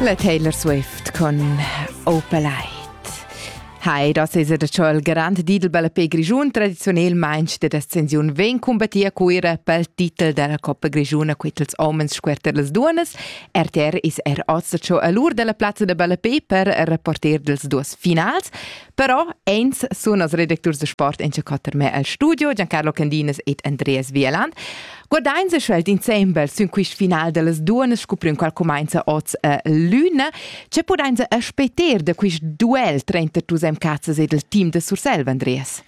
La Taylor Swift con Opal Eye. Hai, das es er schon il garant Didelbelle per Grischun tradizionalmente de descensiun ven combattia cuira pel titel della Coppa Grischuna quitels homens squerter les duonas. RTR is er ossa cho all'ur della plazza de Ballapé per reporter dels duas finals. Però eins sun as redacturs da sport in quatter me al studio Giancarlo Candinas ed Andreas Wieland. Guardains schwelt insembel sün quist final dellas duonas scupriun qual cumainza oz a eh, l'üna. Ce pudains aspeter da quist duel tranter tus MKs ed il team da Sursel, Andreas?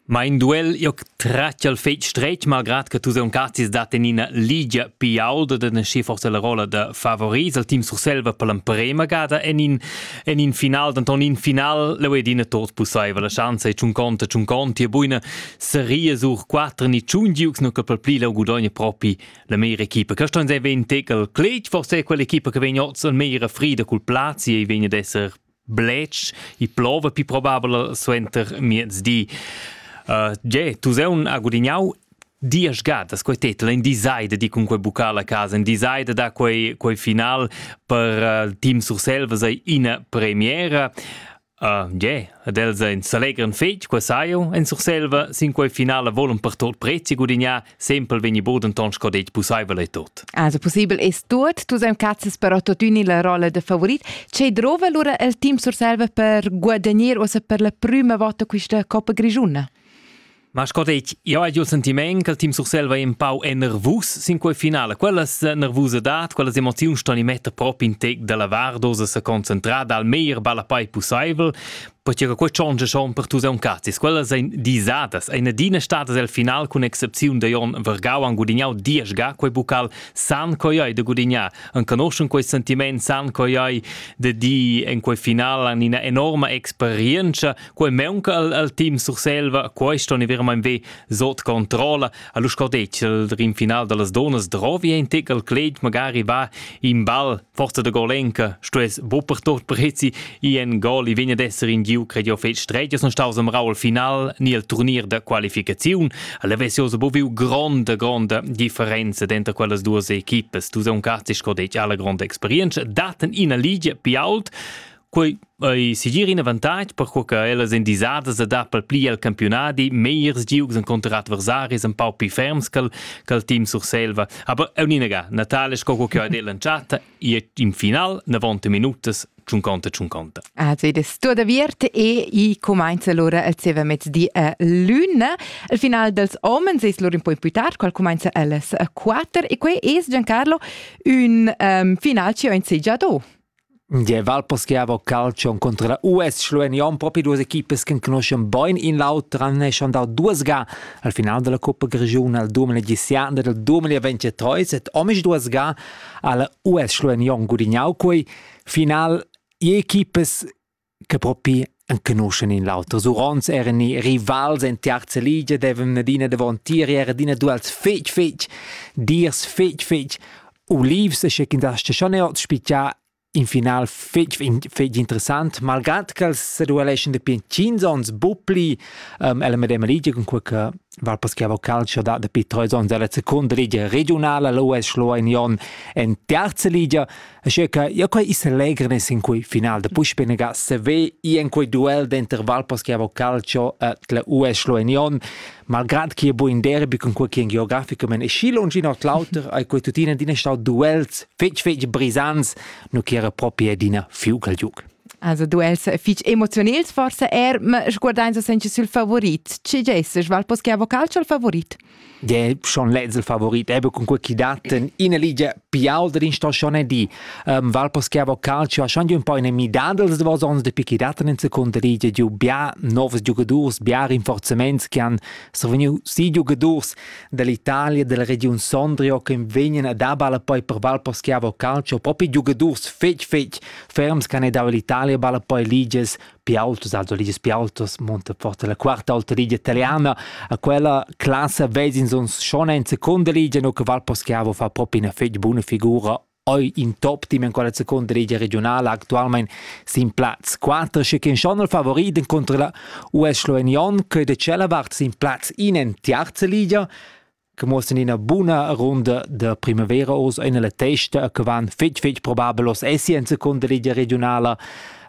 Mein duel io tratg al fetg stretg malgrad che tu sauncastis dat en ina ligia piauda da naschi forsa la rolla da favoris al team Surselva per l'emprema gada en in en in final denton in final leu ed ina tot pusseiva la schanza e tschun conta tschun conti e buina seria sur quater ni tschun giugs nu che per pli leu gudogna propi la meira equipa che ston sei ven tegal cletg forse quell'equipa che vegn oz al meira frida cul plazi e vegn ad esser bletsch i plova pi probabel suenter miezdi. Uh, tge, tu sei un ha gudignau dies gadas quei titel in decided di cun quei bucca la casa in decided da quei quei final per uh, team Surselva sei ina premiera Uh, yeah, ed els ein s'allegran fetg, qua saiu, en Surselva, sin quei finale volon per tot prezi gudignar Simpel vegni bu denton sco detg pusseivel e tot. Also possibel es tot, tu sem cazzas però totuni la rolla de favorit. Ce drova allora il team Surselva per guadagnare o se per la prima volta questa Coppa Grigiuna? Ma sco detg, io ho il sentiment che il team Surselva è un po' nervus sin quel finale. Quella nervusidad, quelle emozioni stanno i mette proprio in tec della vardosa se concentrata al meglio balla poi possibile. Pertge che quei tschontscha schon per tus aun cazis. Quellas ein disadas. Ein adina stadas el final cun excepziun da Jon Vergau han gudignau diesch ga quei bucal san coiai da gudignar. An conoschun quei sentiment san coiai de di en quei final an ina enorma experienza. Quei meunca al, al team Surselva, questo ne ver mein ve sot controlla. Alus cordetg il rim final dallas donas drovi ein tic al cleit magari va in ball Forza da Golenka stuess buc per tot prezi i en gol i vegn ad esser in giu credio fetg stretg son staus am Raul final ni el turnier da qualificaziun alla Vesiosa bu viu gronda gronda differenza denter quellas duas equipes tu sei un cazzi sco detg alla gronda experienza daten ina ligia pi ault Quei ei segir in avantatg per co che ellas ein disadas da dar pil pli el campiunadi megliers giugs encunter adversaris empau pli ferms che il team Surselva. Aber auninaga, Natale sco co che ha detto l'entschatta, in final 90 minutas tschunconta tschunconta. Also ed es tua da viert e i cumainza l'ora al zeva mezdi a luna. Al final dels homens es lur un po' più tard, qual cumainza alles a 4 e quei es Giancarlo un um, final ci ho in segiado. Der Walpers giava calcium contro la US schluegnond propi duas equipas che conoscen bain in l'auter han eschan dau duas ga al final della Coppa Grigiun al 2017 del 2023 et omisch duas ga alla US schluegnond gudignau quei final je equipas che propi enconuschen in l'auter. Surons eran i rivals en terza liga, devan adina davantieri, era adina duels fetg, fetg, dirs fetg, fetg. Olivs, che in das schon è spicia in final fetg, fetg interessant, malgrad che els se dueleschen de piancins ons bupli um, ella medema liga con qualche Val paschiava calcio da dapi treis onns dalla secunda ligia regiunala l'US Schloen Jon en terza ligia, asche che ja quei is allegre sin quei final de Puschpenega seve i en quei duel denter Val paschiava calcio et la US Schloen Jon, malgrad che è buin derby con quei che geografico men e schi longi nord l'auter ai quei tutina din stau duels fetg fetg brisants, nu che era proprio d'ina fiugal giuc. Also du els fich emozionels forsa er, ma sguardains senche sül favorit. Chi gesses? Val pos che vocal il favorit? De schon lez il favorit eben con quei chi daten in ligia pial der instagione di um, val pos che vocal ci schon un po in midad dels davos ons de pichi daten in seconda ligia giu bia novs giogadors bia rinforzaments che han survegniu si giogadors dall'Italia della region Sondrio che vegnan ad abala poi per val pos che vocal ci propi giogadors fetch fetch Ferms che han dau l'Italia balla poi ligias più autos, also ligias più autos, monta forte la quarta alta ligia italiana, a quella classe vezins uns schon in seconda ligia, no che Valposchiavo fa proprio una fece buona figura oi in top team in quella seconda ligia regionale actualmente sin Platz 4 che kin schon il favoriten contro la US Sloenion che de cella vart sin Platz in in terza ligia che muossan ina buna runda da primavera oz ina la testa che van fetg fetg probabel oz essi en seconda ligia regionala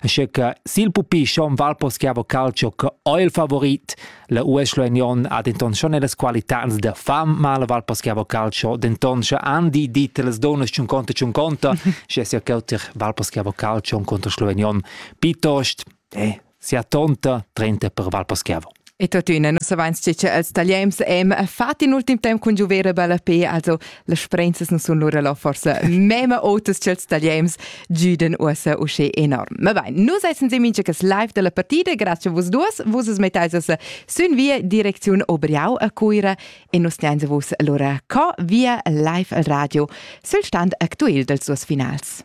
Asche che sil pupi schon Valposchiavo Calcio che è il favorit la US Union ha denton schon las qualità da fam mal Valposchiavo Calcio denton sche Andi dit las donas un conto un conto sche sia che Valposchiavo Calcio un conto Slovenion piuttosto eh sia tonta 30 per Valposchiavo. E tuttina nus savens che els tagliems em fat in ultim temp cun giuver bella pe, also las sprenzas nu sun lura lo forse mema otas ch'els tagliems giuden uossa usche enorm. Ma bain, nus essen seminche che live della partida, grazie vos duos, vos es mettaisas sün via direcziun Obriau a Cuira e nus tiainse vos lura co via live al radio sul stand actuel dels suos finals.